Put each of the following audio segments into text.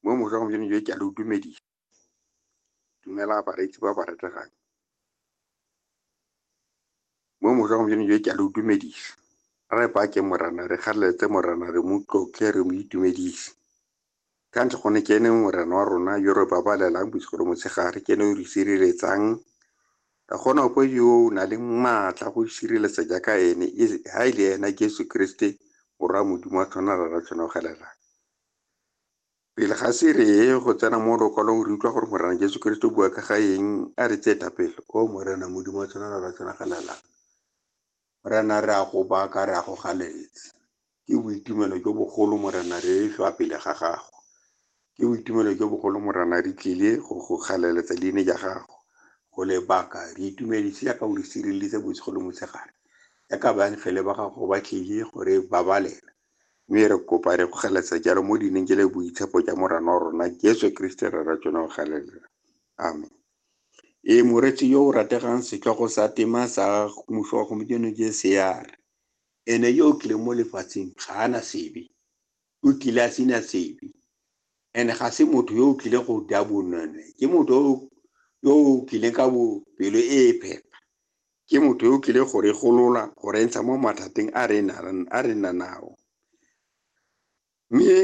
mo mosa gompieno jo ke a le utumedisa dumela bareetsi ba ba retegang mo mosa gompieno jo ke a le utumedisa re bake morana re kgaleletse morana re mo tlotle re mo itumedise ka ntle gone ke ene morana wa rona yo re babalelang bosigo le motshegare ke ene o re sireletsang Ka go na kwa yo o nang le maatla go isireletsa jaaka ene, ha e le ena Jesu Keresete, Morwa wa Modimo a tshwana le Ratshonogelela. Pele ga se re ye go tsena mo lokwalong re utlwa gore Morena Jesu Keresete o bua ka ga eng, a re tsee thapelo, O Morena Modimo wa tshwana le Ratshonogelela, Morena, re a go baka, re a go galetsa. Ke boitumelo jo bogolo, Morena, re hlwa pele ga Gago. Ke boitumelo jo bogolo, Morena, re tlile go go galeletsa leine ja Gago, go le baka. Re itumedise jaaka o re sireleditse bosigo le motshegare, jaaka baengele ba Gago ba tlile go re babalela. Mme re kopa, re go galeletsa jalo mo leineng je le boitshepo ja Morena wa rona Jesu Keresete Rre ra tsona, o galelela. Amen. e moretsi yo o rategang setlhogo sa tema sa mmuso wa gompieno jcr ene yo o tlileng mo lefatsheng ga ana sebe o tlile a sena sebe and ga se motho yo o tlileng go ja bonone ke motho yo o tlileng ka pelo e e phepa ke motho yo o tlileng go re golola go re ntsha mo mathateng a re nang nao Mme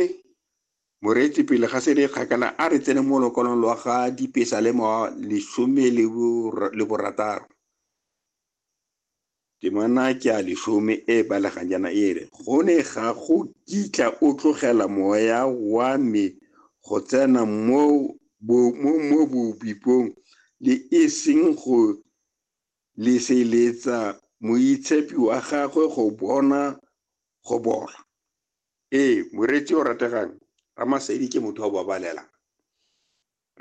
moreetsi pele ga se le kgakala a re tsene mo lokolong lwa ga dipesa le mo lesome le borataro temana ke a lesome e balegang jaana e re go ne ga go kitla o tlogela moya wa me go tsena mo mo bobipong le e seng go leseletsa moitshepi wa gagwe go bona go bola ee moreetsi o rategang ramasedi ke motho wa babalelang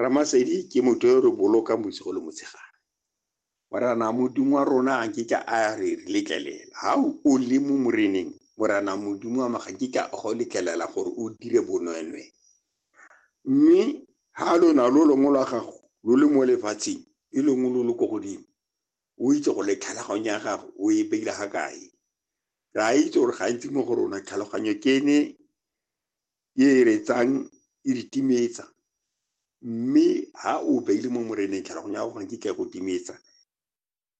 ramasedi ke motho yo re bolokang bosigo le motshegare morana modimo wa rona ga nkitla a re re letlelela ga o le mo moreneng morana modimo wa maga nkitla a go letlelela gore o dire bonwenwe mme ga lona lo longwe lwa gago lo le mo lefatsheng e lengwe lo le ko godimo o itse go le tlhaloganyo ya gago o e beile ga kae re a itse gore gantsi mo go rona tlhaloganyo ke ne e e retsang e re timetsa mme ha o beile mo moreneng tlhaloganyo ya gago ga nkitla go timetsa